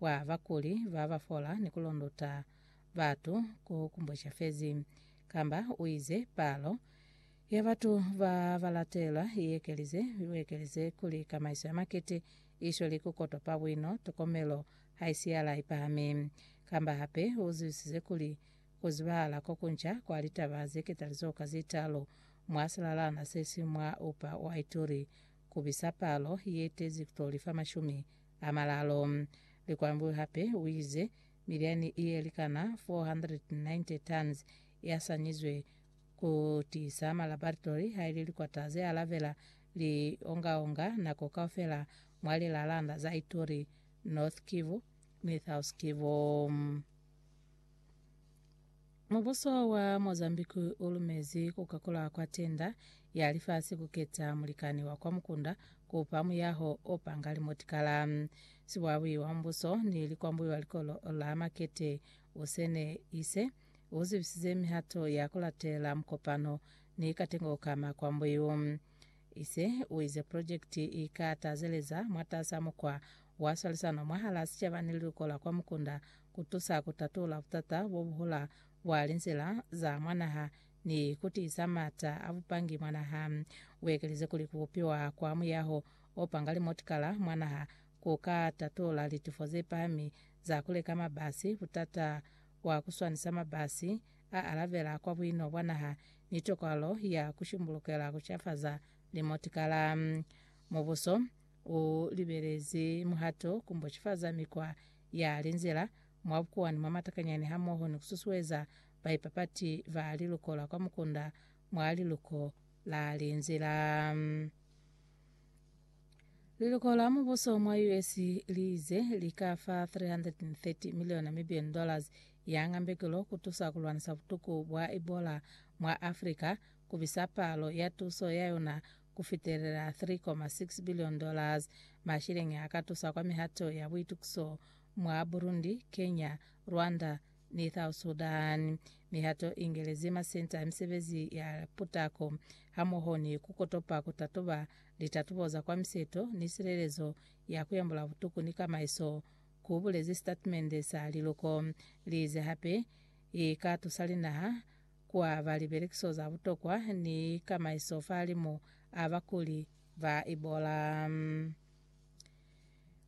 wa bakuli ba ba fola ni ku londota batu ku kumbweca fezi, kamba u ize palo ya batu ba ba latelwa i ekelize, u ekelize kuli kamaiso ya makete i shweli ku kotopa buino, tokomelo ha i siyala i pahami. Kamba hape u zwisise kuli ku zibahala ko kunca kwa litaba ze ketalizo ka ze talu mwa silalana se si mwa upa wa ituri ku bisa palo ye tezi ku to lifa mashumi a malalo. Likwambu hape uize miliani ye likana 490 tons ya sanyizwe ku tiisa ma laboratory haili likwata ze alabela li ongaonga nako kaufela mwa lilalanda za Ituri, North Kivu ni South Kivu. Mubuso wa Mozambique u lumezi ku kakulwa kwa tenda ya lifasi ku keta mulikani wa kwa mukunda ku pa muyaho o panga limotikala. Sibwabwi wa mubuso ni likwambwi wa likolo la makete u sene ise u zibisize mihato ya ku latela mukopano ni katengo ka makwambwi u. Ise u ize project i ka tazeleza mwatas'a mukwa wa swalisano mwahal'a sicaba ni liluko la kwa mukunda ku tusa ku tatula butata bo bu hula bwa linzila za mwa naha ni ku tiisa m'ata a bupangi mwa naha. U ekelize kuli ku bupiwa kwa muyaho o panga limotikala mwa naha ku ka tatula litufo ze pahami za ku leka mabasi, butata bwa ku swanisa mabasi a alabela kwa buino bwa naha, ni tokwalo ya ku shimbulukela ku cafaza limotikala. Mubuso u libelezi muhato ku mbocifaza mikwa ya linzila mwa bukuwani mwa matakanyani hamoho ni kususueza baipapati ba liluko la kwa mukunda mwa liluko la linzila. Liluko la mubuso mwa US liize lika fa 330 million Namibian dollars ya ngambekelo kutusa kulwanisa butuku bwa Ebola mwa Africa, kubisa palo ya tuso yayona ku fitelela $3.6 billion, mashilenge a ka tusa kwa mihato ya buitukiso mwa Burundi, Kenya, Rwanda ni South Sudan. Mihato i ngelezi masenta a misebezi ya putako hamoho ni ku kotopa ku tatuba litatubo za kwa miseto ni silelezo ya ku yambula butuku ni kamaiso, ku bulezi sitatimende sa liluko. Li ize hape i ka tusa linaha ku aba libelekiso za butokwa ni kamaiso fahalimu a bakuli ba Ebola.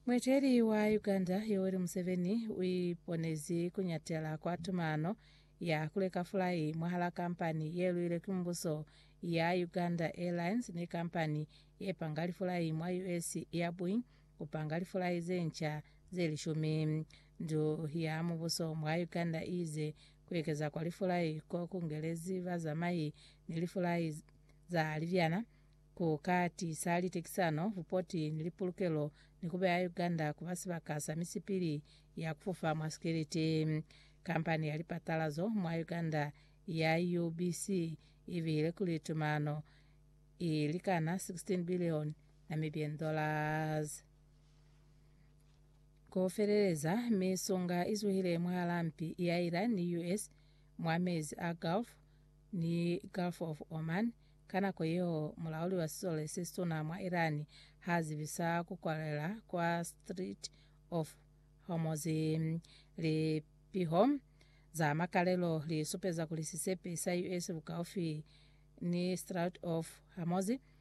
Mueteli wa Uganda Yoweri Museveni uiponezi kuñatela kwa tumano ya kuleka fulai mwahala kampani yeluilwe ki mubuso ya Uganda Airlines ni kampani yepanga lifulai mwa US ya Boeing kupanga lifulai zenca zelishumi. Ndu ya mubuso mwa Uganda iize Ku ekeza kwa lifulai ko ku ngelezi bazamai ni lifulai za libyana ku ka tiisa litekisano, bupoti, ni lipulukelo ni ku beya Uganda ku ba sibaka sa misipili ya ku fofa mwa sikeleti. Kampani ya lipatalazo mwa Uganda ya UBC i bihile kuli tumano i likana 16 billion Namibian dollars. Ku feleleza, misonga i zuhile mwahalaa mpi ya Iran ni US mwa mezi a Gulf ni Gulf of Oman ka nako yeo mulauli wa sisole se situna mwa Iran ha zibisa ku kwalela kwa Strait of Hormuz. Lipiho za makalelo li supeza kuli sisepe sa US bukaufi ni Strait of Hormuz